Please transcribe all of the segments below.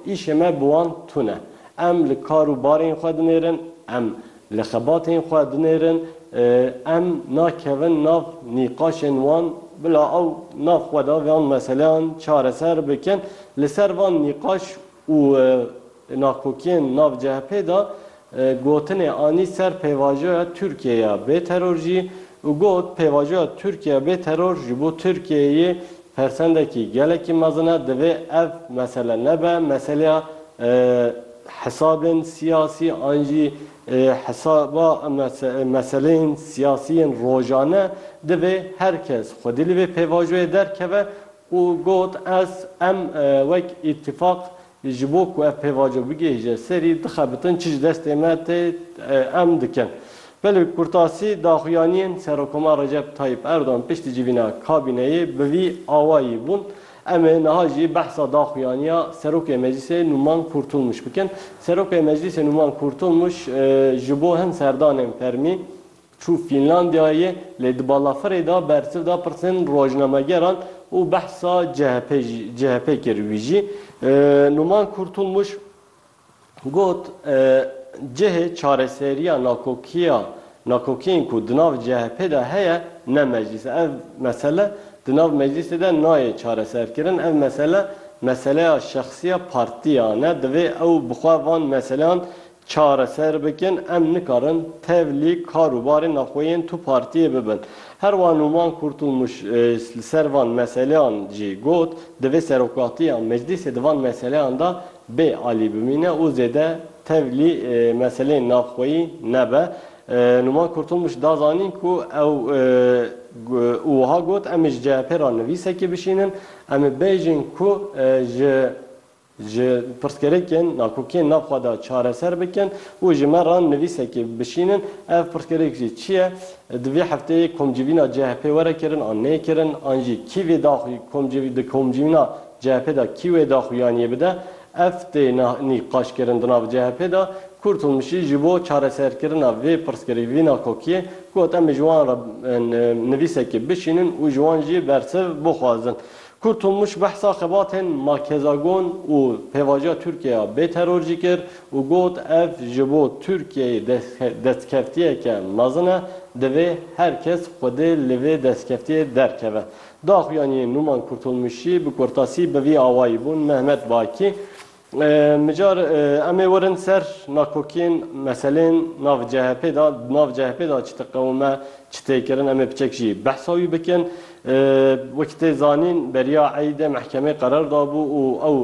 Îşê me bi wan tune. Em li kar û barên xwe dinêrin, em li xebatên xwe dinêrin, em nakevin nav nîqaşên wan bila ew nav xwe de van meseleyan çareser bikin. Li ser van nîqaş û nakokiyên nav CHP'ê de Gotinê anî ser pêvajoya Tirkiyeyê ya bê teror jî û got, Pêvajoya Tirkiyeyê ya bê teror ji bo Tirkiyeyê persendekî gelekî mezin e, divê ev mesele nebe meseleya hesabên siyasî an jî hesaba meseleyên siyasî yên rojane, divê her kes xwedî li vê pêvajoyê derkeve û got, Ez, em, wek îtîfaq ji bo ku ev pêvajo bigihîje serî dixebitin çi ji destê me tê em dikin. Belê Kurtasî daxuyaniyên Serokkomar Recep Tayyîp Erdogan piştî civîna kabîneyê bi vî awayî bûn, Em ê niha jî behsa daxuyaniya Serokê Meclîsê Nûman Kurtulmuş bikin. Serokê Meclîsê Nûman Kurtulmuş ji bo hin serdanên fermî Çû Fînlandiyayê lê di balafirê de bersiv da pirsên rojnamegeran û behsa CHP jî CHP kir. Wî jî Numan Kurtulmuş got, Cihê çareseriya nakokiya nakokiyên ku di nav CHP'ê de heye ne meclîs e. Ev mesele di nav meclîsê de nayê çareserkirin. Ev mesele meseleya şexsiya partiyan e. Divê ew bi xwe van meseleyan çareser bikin em nikarin tevlî kar û barên naxweyên tu partiyê bibin. Her wa Nûman Kurtûlmûş li ser van meseleyan jî got, divê serokatiya meclîsê di van meseleyan de bê alî bimîne û zêde tevlî meseleyên naxweyî nebe. Nûman Kurtûlmûş da zanîn ku ew û wiha got, Em ê ji CHP'ê re nivîsekê bişînin, em ê bêjin ku ji. ji pirsgirêkên nakokiyên nav xwe de çareser bikin û ji me re nivîsekê bişînin. Ev pirsgirêk jî çi ye? Di vê hefteyê komcivîna CHP'ê were kirin an nê kirin? An jî kî vê daxuyî komcivî di komcivîna CHP'ê de kî wê daxuyaniyê bide? Ev tê nîqaşkirin di nav CHP'ê de. Kurtulmuş jî ji bo çareserkirina vê pirsgirêk, vî nakokiyê got em ê ji wan re nivîsekê bişînin û ji wan jî bersiv bixwazin. Kurtulmuş behsa xebatên Makezagon û pêvajoya Tirkiyeya bê teror jî kir û got, Ev ji bo Tirkiyeyê destkeftiyeke mezin e, divê her kes xwedê li vê destkeftiyê derkeve. Daxuyaniyên Nûman Kurtulmuşî bi kurtasî bi vî awayî bûn, Mehmet Bakî Mijar em ê werin ser nakokiyên, meseleyên nav CHP'ê de, di nav CHP'ê de çi diqewime, çi tê kirin em ê biçek jî behsa wî bikin. Wekî tê zanîn beriya Eîdê mehkemeyê qerar dabû û ew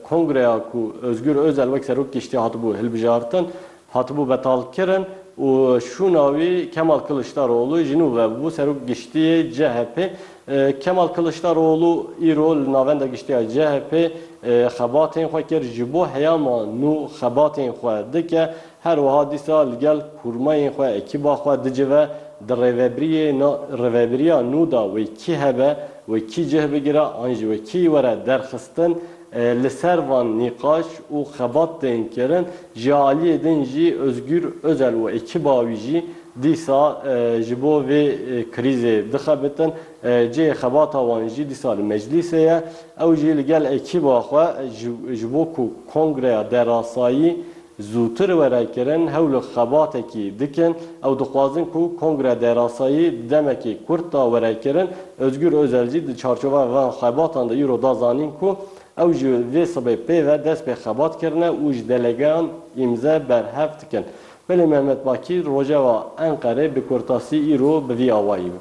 kongreya ku Ozgûr Ozel wek serok kiştiye hatibû hilbijartin, Hatibû betalkirin û şûna wî Kemal Kiliçdaroglu ji nû ve bû Serok Giştî yê CHP'ê. Kemal Kiliçdaroglu îro li Navenda Giştî ya CHP'ê xebatên xwe kir, ji bo heyama nû xebatên xwe dike, her wiha dîsa li gel kurmayên xwe, ekîba xwe dicive, di rêvebiriyê rêvebiriya nû de wê kî hebe, wê kî cih bigire an jî wê kî were derxistin, Li ser van nîqaş û xebat tên kirin. Ji aliyê din jî Ozgûr Ozel û ekiba wî jî dîsa ji bo vê krîzê dixebitin. Cihê xebata wan jî dîsa li Meclîsê ye. Ew jî li gel ekiba xwe ji bo ku kongreya derasayî Zûtir were kirin hewl û xebatekî dikin. Ew dixwazin ku kongre derasayî di demekê kurt de were kirin. Ozgûr Ozel jî di çarçoveya van xebatan de îro da zanîn ku ew ji vê sibê pê ve dest pê xebat kirine û ji delegeyan îmze berhev dikin. Belê Mehmet Bakîr rojeva Enqerê bi kurtasî îro bi vî awayî bû.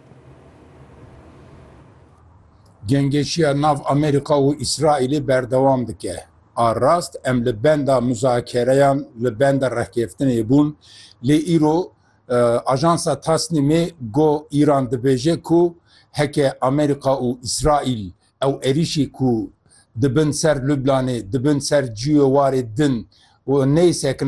Cengêşiya nav Amerîka û Îsraîlê berdewam dike. A rast em li benda muzakereyan, li benda rehkeftinê bûn, lê îro ajansa Tasnîmê got Îran dibêje ku heke Amerîka û Îsraîl ew êrîşî ku dibin ser Lublanê, dibin ser cûyê warê din û neyê sekina